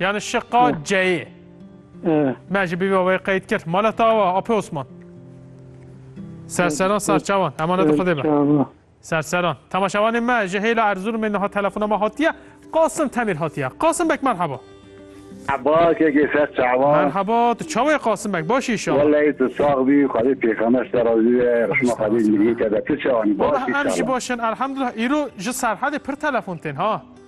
Yani şiqa ceyê. Me ji bîva wê qeyd kir. Mala tawa Apê Osman. Serseran serçawan. Emaneti xudê be. Serseran. Temaşevanê me ji hêla Erzurumê niha telefona me hatiye. Qasim Temîr hatiye. Qasim bek merhaba. Merhaba kekê ser çawa. Merhaba tu çawê Qasim bek başî inşallah. Wallahî tu sax bî xwedê pêxemes te razî be rixma xwedê miriyê te be tu çawanî başî inşallah. Em jî başin elhamdullah îro ji serhedê pir telefon tên ha.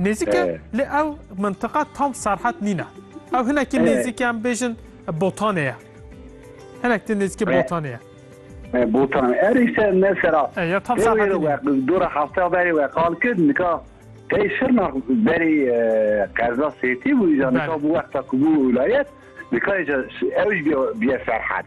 Nêzik e lê ew mintiqa tam serhet nîne. Ew hinekî nêzik em bêjin botanê ye. Hinek tê nêzikê botanê ye. Botan erê se ne sera. Ya tam serhet nîne. Dora hafta berê we qal kir nika tey şirna berê qerza sêtî bû îja nika bû wexta ku bû wilayet nika îja ew jî bîye serhet.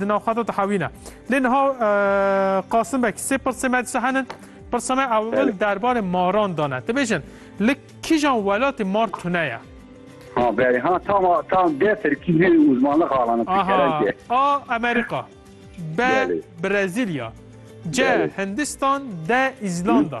Di nav xata dihewîne. Lê niha Qasim Beg sê pirsê me dişe henin. Pirsa me ewil derbarê maran dane. Dibêjin li kîjan welatê mar tune ye? Ha berê ha tam tam dê Tirkî lê uzmanlıq alana Tirkerence. A Amerika. B Brezilya. C Hindistan. D İzlanda.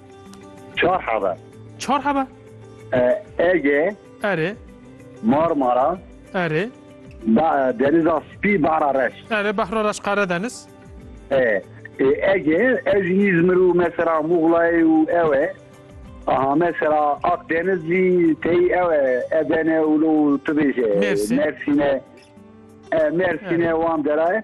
Çar heve. Çar heve? Ege. Erê. Marmara. Erê. Deniza Spî Bahra Reş. Erê Bahra Reş Karadeniz. E. Ege ez İzmir û mesela Muğla'yê û ew e. Aha mesela Akdeniz jî tey ew e Edene û tu bêje Mersin'e. Mersin'e wan dera e.